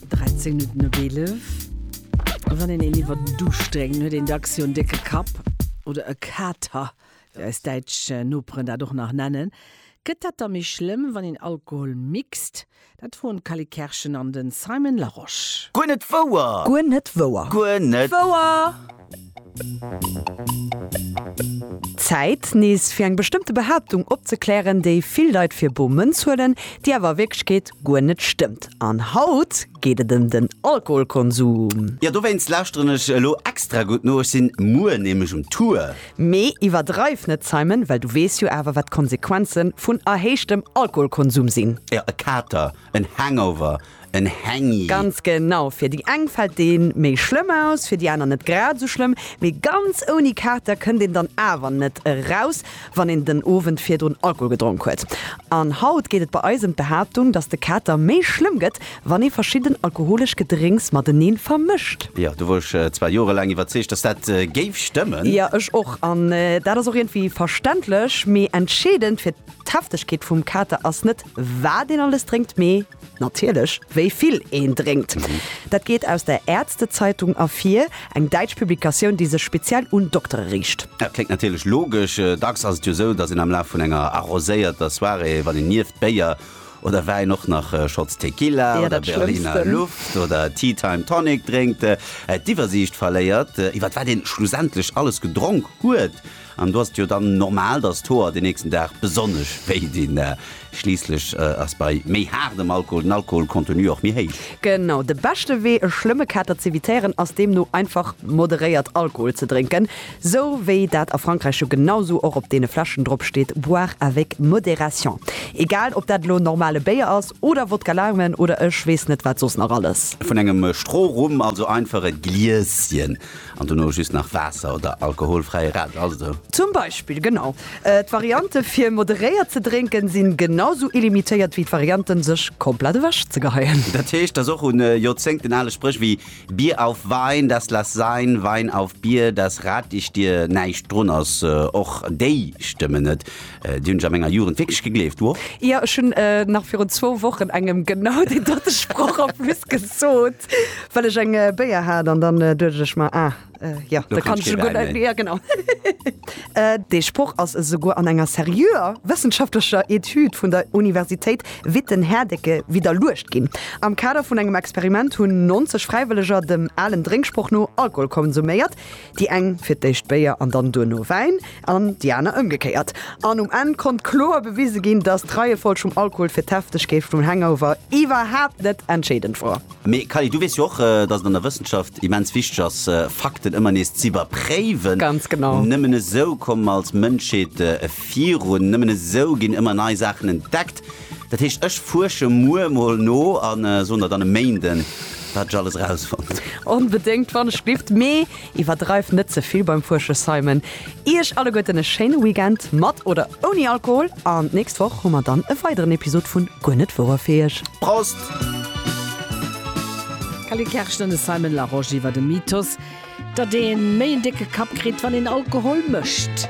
13 Minuten op 11. Wann een een iwwer den Duuscht drénkt, huet een dacks jo en décke Kapp oder e Kater, wéi eis däitsch Noperen dat och nach nennen. Gëtt dat da méi schlëmm, wann een Alkohol mixt? Dat froen d'Cally Kerschen an de Simon Larosche. Guer net wouer! Guer net wouer! Guer net wouer! Zäit, nees fir eng bestëmmte Behaaptung opzeklären, déi vill Leit fir bo Mënz huelen, déi awer a Wierklechkeet guer net stëmmt. An haut geet et ëm den Alkoholkonsum. Jo, dowéinst lauschteren ech elo extra gutt no, ech sinn muer nämlech um Tour. Mee iwwerdreif net, Simon, well du weess jo awer, wat d'Konsequenzen vun erhéichtem Alkoholkonsum sinn. Jo, e Kater, en Hangover, en Hängi. Ganz genau, fir déi eng fält dee méi schlëmm aus, fir déi aner net grad esou schlëmm, mee ganz ouni Kater kënnt een dann awer net eraus, wann een den Owend virdrun Alkohol gedronk huet. An haut geet et bei eis ëm d'Behaaptung, dass de Kater méi schlëmm gëtt, wann ee verschidden alkoholesch Gedrénks mateneen vermëscht. Jo, do wor ech zwar jorelaang iwwerzeegt, dass dat géif stëmmen. Jo, ech och. An dat ass och iergendwéi verständlech. Mee entscheedend fir d'Heftegkeet vum Kater ass net, wat een alles drénkt, mee. Natierlech, wéi vill een drénkt. Dat geet aus der Ärztezeitung ervir, eng däitsch Publikatioun, déi sech speziell un Doktere riicht. Dat kléngt natierlech logesch. Dacks ass et jo sou, datt een am Laf vun enger arroséierter Soirée, wann een nieft Béier oder Wäin och nach Shots Tequila oder Berliner Luft oder Tea Time Tonic drénkt, d'Iwwersiicht verléiert, iwwer wat een schlussendlech alles gedronk huet. An do ass et jo dann normal, dass d'Hoer den nächsten Dag besonnesch wéi dinn. Schliisslech ass bei méi haardem Alkohol den Alkoholcontenu och méi héich. Genau. De beschte Wee e schlëmme Kater z'evitéieren ass deemno einfach moderéiert Alkohol ze drénken, sou wéi dat a Frankräich jo genau sou och op deene Fläschen drop steet, boire avec modération. Egal ob dat elo normale Béier ass oder Wodka Laumen oder ech weess net wat soss nach alles. Vun engem Strohrum, also einfach e Glieschen. An dono just nach Waasser oder alkoholfräie Radler, ass et esou? Zum Beispill, genau. D'Variante fir moderéiert ze drénken si genau esou illimitéiert wéi d'Varianten sech komplett ewech ze geheien. Dat heescht, dass och un Joerzéngten ale Spréch wéi Bier auf Wein, das lass sein, Wein auf Bier, das rat ich dir näischt drun ass. Och déi stëmmen net. Déi hunn ech a menger Jugend wierklech gegleeft, wow! Jo, ech hunn nach virun zwou Wochen engem genau deen dote Sproch a plus gesot, well ech eng Béier hat an dann duecht ech mer, ah jo, da kann ech jo guer net méi, jo genau. Dee Sproch ass esouguer an enger seriöer wëssenschaftlecher Etüd vun der Universitéit Witten-Herdecke widderluecht ginn. Am Kader vun engem Experiment hunn 90 Fräiwëlleger dem alen Drénksproch no Alkohol konsuméiert. Déi eng fir d'éischt Béier an dann duerno Wäin an déi aner ëmgekéiert. An um Enn konnt kloer bewise ginn, dass d'Reiefolg vum Alkohol fir d'Heftegkeet vum Hangover iwwerhaapt net entscheedend wor. Mee Kally, du weess jo och, dass et an der Wëssenschaft immens wichteg ass, Fakten ëmmer nees z'iwwerpréiwen. Ganz genau. Nëmmen esou komme mer als Mënschheet virun. Nëmmen esou ginn ëmmer nei Saachen entdeckt. Dat heescht, ech fuersche muer emol no a soen der dann e Méinden, wat ech alles erausfonnt. Onbedéngt, wann ech dierft. Mee iwwerdreift net ze vill beim Fuersche, Simon. Iech alleguerten e schéine Weekend, mat oder ouni Alkohol, an d'nächst Woch hu mer dann e weideren Episod vu Guer net wouer fir iech. Prost! D'Cally Kersch an de Simon Larosche iwwer de Mythos, datt ee méi en décke Kapp kritt, wann een Alkohol mécht.